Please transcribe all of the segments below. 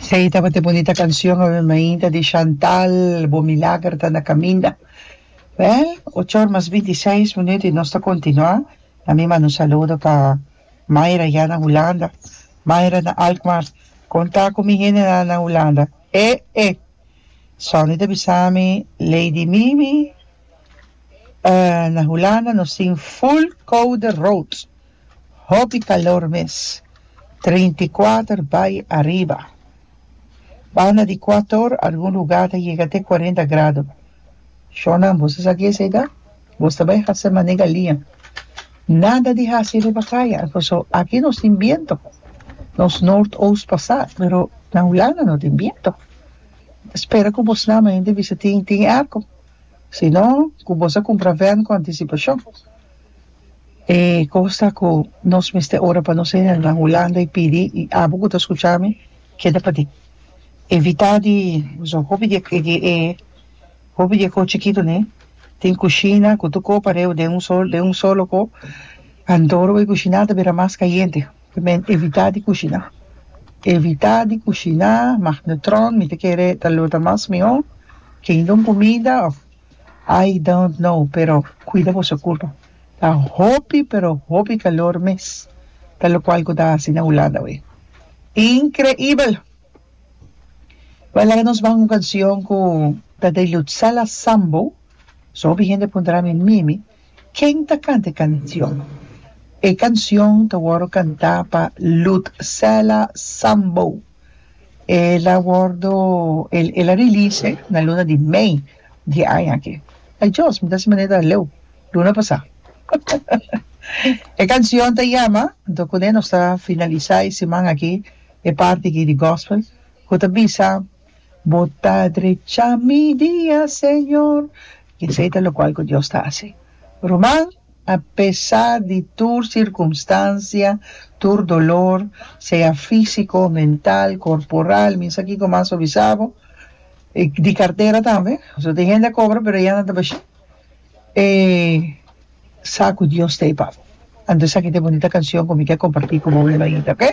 Sei tabata e bonita canción Ave Mainta di Chantal, Bo milager ta na caminda. Wel, ocho or mas binti seis minuut y nos ta continua. A mi manda un saludo pa Myra ya na Hulanda. Myra na Alkmaar, con ta cu mi hendenan na Hulanda? E e! Sonny ta bisa mi, Lady Mimi, eh, na Hulanda nos tin full koude rood. Hopi calor mes, treinta i kuater bai ariba. Banda di kuator algun lugar ta yega te kuarenta grado. Shornan boso sa ki esei ta? Boso ta bai hasi mané galia. Nada di hasi riba kaya, paso aki nos tin biento. Nos noord-oost pasá, pero na Hulanda no tin biento. Ta spera cu bo snama hende bisa tin tin airco. Si no, cu boso a cumpra vern cu anticipashon. E cos ta cu nos mester ora pa nos hernan Hulanda y pidi y abo cu ta scucha mi keda pa di evita di usa hopi di e hopi di e cos chikitonan den cushina cu tur cos pareu den un solo den un solo cos and ora bo cushina a ta bira mas cayente por me evita di cushina evita di cushina magnetron mi ta kere ta lo ta mas mihor kendo un comida of. I don't know pero cuida boso curpa ta hopi pero hopi calor mes ta locual cu ta haci na Hulanda wey increibel why laga nos ban un cancion cu ta de Lutzala Sambo so hopi hende puntra mi mimi ken ta canta e cancion e cancion ta wordo canta pa Lutzala Sambo. El a wordo el el a release na luna di mei di aña aki. Ay Dios, mi ta hasi manera ta leu luna pasá. E cancion ta yama, anto cuné nos ta finalisá e siman aki e parti aki di gospel cu ta bisa, Bo ta drecha mi dia, Señor. Esei ta locual cu Dios ta hasi. Ruman. A pesa di tur sirkunstansia, tur dolor, sea físiko, mental, korporal, misa kiko mas so bisa bo, i di kartera tambe, pasobra tin hende a kobra pero e yana tabashí, e sa ku Dios ta e papo. Anto esaki ta e bunita kanshon ku mi ke kompartí ku bo mebaninta, oke?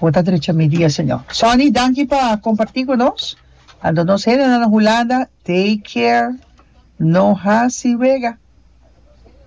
Bo ta drecha mi dia, Señor. Sonny, danki pa kompartí ku nos. Anto nos hendenan na Hulanda, take care, no hasi wega.